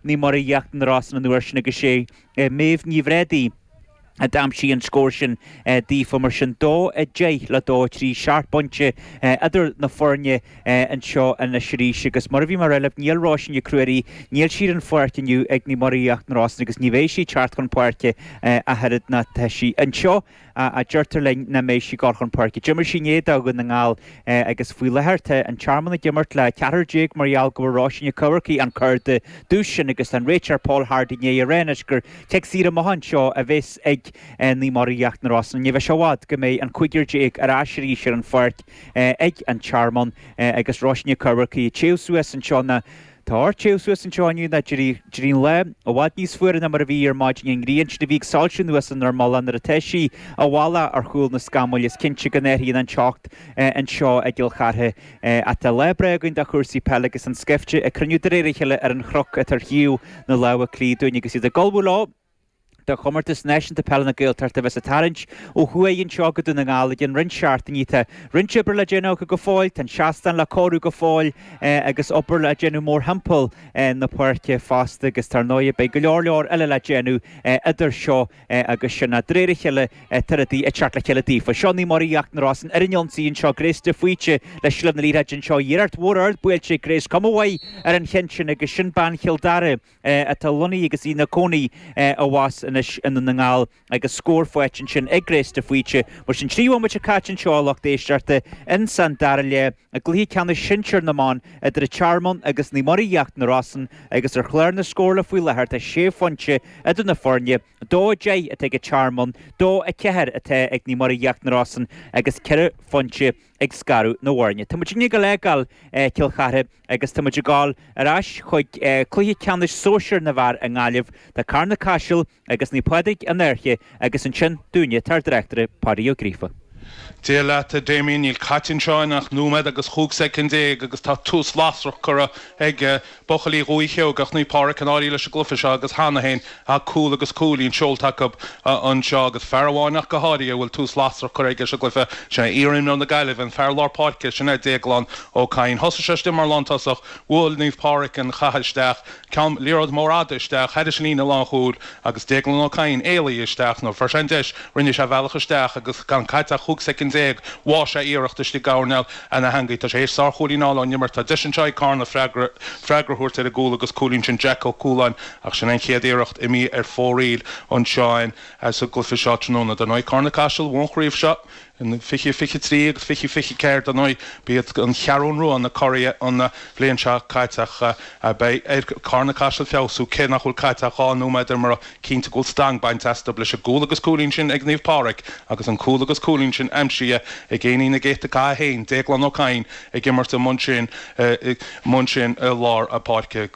Naomh Muire Íochtar na Rosann an uair sin agus sé Méabh Ní Bhrádaigh a d'aimsigh an scór sin daofa. Mar sin, dó a deich le dó a trí, seacht bpointe idir na foirne anseo anois arís agus mar a bhí mé a rá libh, níl Róisín Nic Ruairí, níl sí ar an pháirc inniu ag Naomh Muire Íochtar na Rosann agus ní bheidh sí ag teacht chun páirce ach oiread ná tá sí anseo. a deirtear linn, nach mbeidh sí ag dul chun páirce. D'imir sí inné do Dhún na nGall agus faoi láthair tá an Tearmann ag imirt le ceathrar déag mar gheall go bhfuair Róisín Nic Eachmharcaigh an cárta dubh sin agus tá an réiteoir Paul Hardy i ndiaidh a rá anois gur cic saor amach anseo a bheas ag Naomh Muire Íochtar na Rosann. Ní bheidh sé i bhfad go mbeidh an cúigear déag ar ais arís ar an pháirc ag an Tearmann agus Róisín Nic Eachmharcaigh ag téamh suas anseo na Tá ort téamh suas anseo inniu ná d'éirigh an lá i bhfad níos fuaire ná mar a bhí ar maidin an ghrian sin a bhí ag soilsiú anuas inár mullach nuair atá sí i bhfolach ar chúl na scamaill, is cinnte go n-athraíonn an teocht anseo i gCill Chartha. Ach tá lá breá againn do chúrsaí peile agus an scaifte ag cruinniú de réir a chéile ar an chnoc atá ar thaobh na láimhe clí dúinn agus iad ag ullmhú leo. do Chomórtas Náisiúnta Peile na Gaeltachta a bheas ag tarraingt ó thuaidh anseo go Dún na nGall i gcionn roinnt seachtainí. Tá roinnt oibre le déanamh acu go fóill, tá an seastán le cóiriú go fóill agus obair le déanamh mórthimpeall na páirce fosta agus dar ndóigh beidh go leor leor eile le déanamh idir seo agus sin. De réir a chéile tá rudaí ag teacht le chéile daofa. Seo Naomh Muire Íochtar na Rosann ar an ionsaí anseo, Grace de Faoite le seilbh na liathróide anseo, iarracht mhór ard buailte ag Grace, cuma mhaith ar an chionn sin agus sin bean Chill Dara, í atá lonnaithe agus ina cónaí abhus anois i nDún na nGall agus scór faighte ansin ag Grace de Faoite. Mar sin, trí bhomaite caite anseo a lucht éisteachta ins an dara leath i gCluiche Ceannais Sinsear na mBan idir An Tearmann agus Naomh Muire Íochtar na Rosann agus ar chlár na scórála faoi láthair tá sé phointe idir na foirne, 2-10 atá ag An Tearmann, 2-4 atá ag Naomh Muire Íochtar na Rosann agus ceithre phointe ag scaradh na bhfoirne. Tá muidinne ag dul a fhágáil Cill Chartha agus tá muid ag dul ar ais chuig cluiche ceannais sóisir na bhfear i nGaillimh. Tá Carna-Caiseal agus Naomh Pádraig an Fhairche agus ansin dúinne tá ár dtráchtaire Páidí Ó Gríofa. Dia leat, a Damien. Níl caite anseo ach nóiméad agus chúig soicind déag agus tá tús lasrach curtha ag Buachaillí Dhúiche Sheoigheach Naomh Pádraig, an Fhairche leis an gcluife seo agus cheana féin tá cúl agus cúilín seolta acu anseo agus fear amháin ach go háirithe a bhfuil tús lasrach curtha aige sa gcluife, sin é iarimreoir na Gaillimhe, an fear lár páirce, sin é Déaglán Ó Cadhain. Thosaigh sé istigh mar lántosach, bhuaigh Naomh Pádraig an caitheamh isteach, ceann liathróid mór fhada isteach, thairis líne lánchúil agus Déaglán Ó Cadhain ag éalú isteach nuair fuair sé an deis, rinne sé a bhealach isteach agus gan caite ach chúig soicind déag, bháigh sé iarracht istigh i gcoirnéal Sna heangaí, Tá sé théis sár-chúilín a fháil ón imirt. Tá deis anseo ag Carna freagra freagra a thabhairt ar an gcúl agus cúilín sin Jack Ó Cualáin ach sin an chéad iarracht imithe ar fóraoil ansin sa gcluiche seo tráthnóna. Dar ndóigh, Carna Caiseal a bhuaigh an chraobh seo in fiche fiche trí agus fiche fiche ceathair. Dar ndóigh, ba iad an Cheathrú Rua na curaidh an bhliain seo caite ach beidh ar Carna Caiseal feabhsú cé nach bhfuil caite ach dhá nóiméad ar mo cinnte go bhfuil stangadh bainte astu leis an gcúl agus cúilín sin ag Naomh Pádraig agus an cúl agus cúilín sin aimsithe ag éinín na gcéadta Cath 1, Déaglán Ó Cadhain ag imirt amuigh ansin amuigh ansin i lár na páirce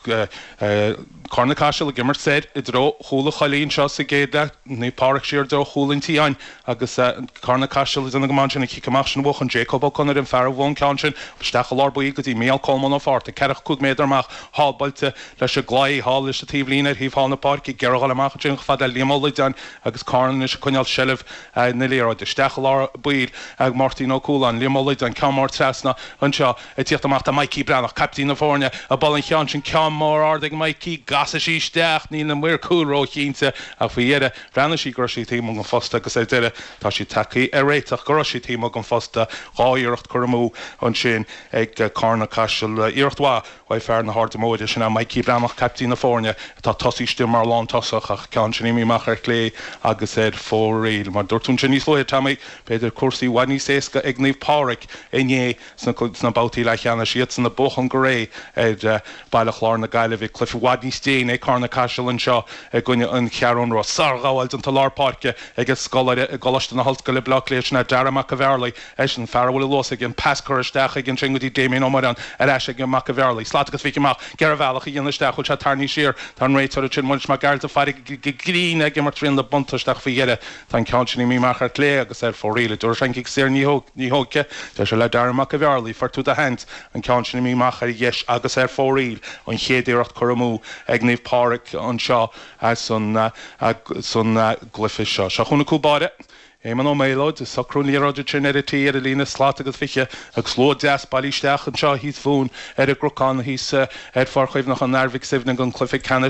Carna Caiseal ag imirt soir i dtreo chúl an Choilligh anseo sa gcéad leath Naomh Pádraig siar i dtreo chúl an tSiáin, Agus Carna Caiseal ag déanamh go maith ansin an cic amach sin a bhuachan Jacob Ó Conaire, an fear a bhuaigh an ceann sin, isteach i lár baill go dtí Mícheál Colmán Ó Fátharta, ceathracha cúig méadar amach, thall buailte leis an gclaí, thall leis an taobhlíne ar thaobh thall na páirce, ag iarraidh í a fháil amach ansin chomh fada le Liam Ó Loideáin agus Carna anois ag coinneáil seilbh na liathróide. Isteach i lár baill ag Máirtín Ó Cualáin, Liam Ó Loideáin, ceann mór trasna anseo ag tíocht amach tá Mikey Breathnach, caiptín na foirne, a bhuail an ceann sin, ceann mór ard ag Mikey, an gcasfaidh sí isteach, níl na maoir chúil ró-chinnte ach faoi dheireadh, Bhreathnaigh sí go raibh sí taobh amuigh den phosta agus ar deireadh, tá siad tagtha ar réiteach go raibh sí taobh amuigh den phosta, dhá iarracht curtha amú ansin ag Carna Caiseal, iarracht mhaith uaidh fear na hAirde Móire, sin é Maidhcí Breathnach, caiptín na foirne, atá tosaithe istigh mar lántosach ach ceann sin imithe amach ar chlé agus ar fóraoil. Mar dúirt tú ansin níos luaithe Tommy, b'fhéidir cúrsaí i bhfad níos éasca ag Naomh Pádraig inné Sna babhtaí leathcheannais, iadsan ag buachan go réidh ar Bhaile Chláir na Gaillimhe, cluiche i bhfad níos déine ag Carna-Caiseal anseo i gcoinne an Cheathrú Rua. Sárghabháil déanta lár páirce ag an scoláire i gColáiste na hOllscoile, Baile Átha Cliath, sin é Dara Mac a' Bhearlaigh, eisean fear a bhfuil luas aige, an pas curtha isteach aige ansin go dtí Damien Ó Muireáin, ar ais ag Mac a' Bhearlaigh, slat agus fiche amach, ag iarraidh bealach a dhéanamh isteach, bhfuil sé tarraingthe siar, tá an réiteoir ansin, Muiris Mac Gearailt, ag faire go grinn ag imirt riail an bhuntáiste ach faoi dheireadh. Tá an ceann sin imithe amach ar chlé agus ar fóraoil, an dtabharfaidh sé an cic saor ní thabharfaidh. Deir sé le Dara Mac a' Bhearlaigh, Fuair tú do sheans, an ceann sin imithe amach ar dheis agus ar fóraoil, an chéad iarracht curtha amú ag Naomh Pádraig anseo san gcluiche seo. Seo chugainn cúl báire, Éamonn Ó Méalóid, ag socrú an liathróid sin ar an tí ar an líne slat agus fiche agus slua deas bailithe isteach anseo thíos fúinn ar an gcnocán thíos ar Pháirc Chuimhneacháin an Athar Mhic Suibhne don cluiche ceannais.